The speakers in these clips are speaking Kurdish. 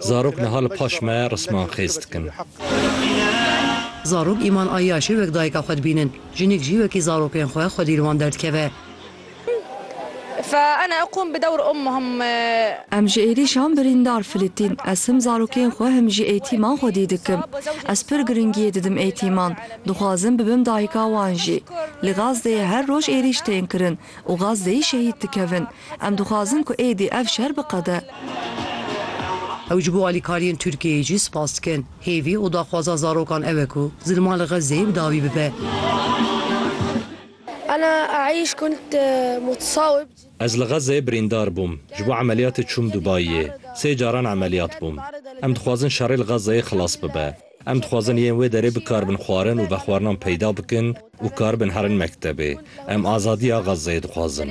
Zarok niha li paş me risman xêz dikin. Zarok Îman Eyyaşê wek dayika xwe dibînin. Jinik jî wekî zarokên xwe xwedî li wan derdikeve. Em ji êrîşan birîndar filîtîn. Ez him zarokên xwe him jî eîtîman xwedî dikim. Ez pir giringiyê didim eîtîman. Dixwazim bibim dayika wan jî. Li Gazdeyê her roj êrîş tên kirin. Û Gazzeyî şehîd dikevin. Em dixwazin ku êdî ev şer biqede. Ew ji bo alîkariyên Tirkiyeyê jî spas dikin. Hêvî û daxwaza zarokan ew e ku zilma li Gazzeyê bi dawî bibe. Ez li Gazzeyê birîndar bûm. Ji bo emeliyatê çûm Dubayiyê. Sê caran emeliyat bûm. Em dixwazin şerê li Gazzeyê xilas bibe. Em dixwazin yên wê derê bikaribin xwarin û vexwarinan peyda bikin û karibin herin mektebê. Em azadiya Xezzeyê dixwazin.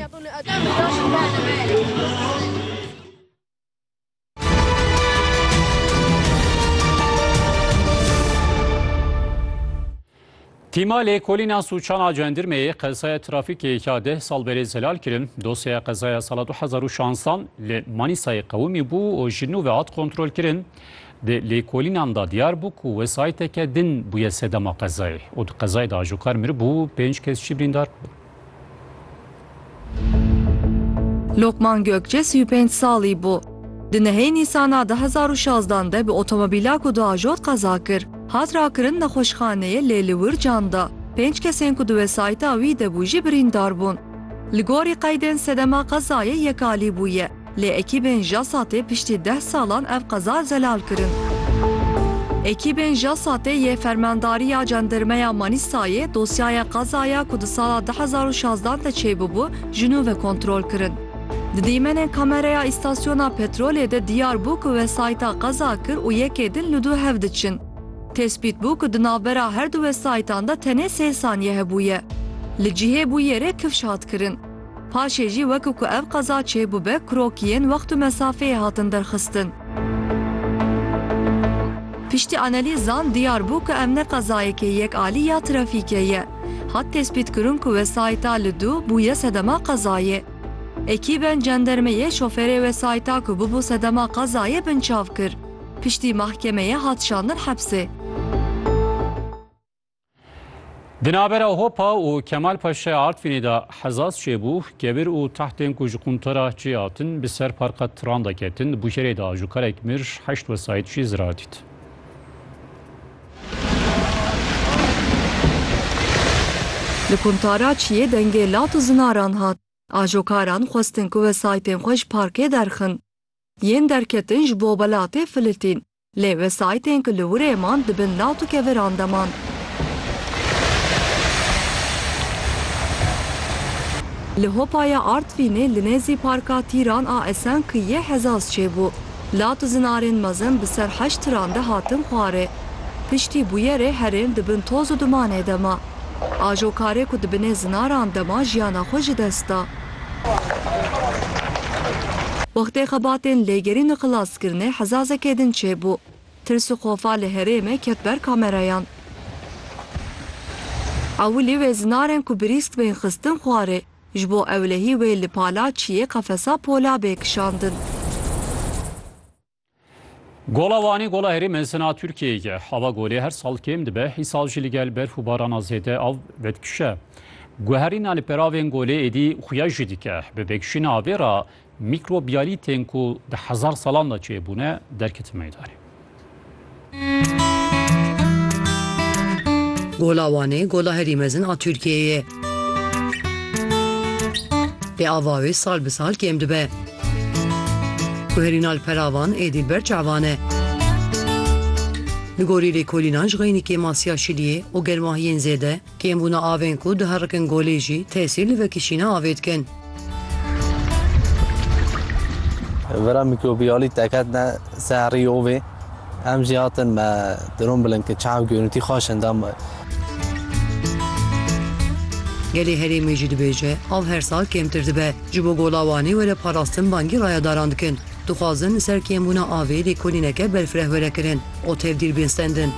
Tîma lêkolîna sûcan a cendirmeyê qezaya trafîkê ya deh sal berê zelal kirin. Dosyaya qezaya sala du hezar û şansdan li Manîsayê qewimî bû û ji nû ve hat kontrolkirin. Di lêkolînan de diyar bû ku wesayîteke din bûye sedema qezayê û di qezayê de ajokarmiribû pênc kes jî birîndar bûn. Lokman Gökçe sî û pênc salî bû. Di nehê Nîsana du hezar û şazdan de bi otomobîla ku diajot qeza kir. Hat rakirin nexweşxaneyê lê li wir can da. Pênc kesên ku di wesayîta wî de bû jî birîndar bûn. Li gorî qeydên sedema qezayê yek alî bûye. Lê ekîbên JASAT'ê piştî deh salan ev qeza zelal kirin. Ekîbên JASAT'ê yê Fermandariya Cendirmeya Manîsayê dosyaya qezaya ku di sala du hezar û şazdan de çêbûbû ji nû ve kontrol kirin. Di dîmenên kamereya îstasyona petrolê de diyar bû ku wesayîta qeza kir û yekê din li dû hev diçin. Tespît bû ku di navbera her du wesayîtan de tenê sê saniye hebûye. Li cihê bûyerê kifş hat kirin. Paşê jî wek ku ev qeza çêbûbe krokiyên wext û mesafeyê hatin derxistin. Piştî analîzan diyar bû ku ev ne qezayeke yek alî ya trafîkê ye. Hat tespîtkirin ku wesayîta li dû bûye sedema qezayê. Ekîbên cendermeyê şoferê wesayîta ku bûbû sedema qezayê binçav kir. Piştî mahkemeyê hat şandin hepsê. Di navbera Hopa û Kemal Paşa Artvînê de hezaz çêbû, kebir û tahtên ku ji quntara çê hatin bi ser parka tiran de ketin. Di bûşerê de ajokarek mir, heşt wesayît jî zirar dît. Li quntara çiyê dengê lat û zinaran hat. Ajokaran xwestin ku wesayîtên xwe ji parkê derxin. Yên derketin ji bo welatê filitîn. Lê wesayîtên ku li wirê man di bin lat û keviran de man. Li Hopaya Artvînê li nêzî Parka Tîran a Esen Kiyê Hezaz çêbû. Lat û zinarên mezin bi ser heşt tiran de hatin xwarê. Piştî bûyerê herên di bin toz û dumanê de ma. Ajokarê ku di binê zinaran de ma jiyana xwe ji dest da. Wextê xebatên lêgerîn û xelaskirinê hezazekê din çêbû. Tirs û xofa li herême ket ber kamerayan. Ewilî wê zinarên ku birîsk bên xistin xwarê, ji bo ewlehî wê li pala çiyê qefesa pola bê kişandin. Gola Wanê gola herî mezina Tirkiyeyê ye. Hava golê her sal kêm dibe, îsal jî li gel berf û barana zêde av vedikişe. Guherîna li peravên golê êdî xuya jî dike. Bi vekişîna avê re mîkrobiyalîtên ku di hezar salan de çêbûne derketin meydanê. Gola Wanê gola herî mezin a Tirkiyeyê ye. Bi ava wê sal bi sal kêm dibe. Ku herî na li pera van êdî li ber çavan e. Li gorî lêkolînan ji xeynîkê masiya şiliyê û germahiyên zêde, Kêmbûna avên ku diherikin golê jî tesîr li vekişîna avê dikin. Vera mîkrobiyalî teketine ser herî ovê. Em jî hatin me dirom bilin ki çav görûntî xwe şin da. Gelê herêmê jî dibêje av her sal kêmtir dibe. Ji bo gola Wanê were parastin bangî rayedaran dikin. Dixwazin li ser kêmbûna avê lêkolîneke berfireh were kirin û tevdîr bên sendin.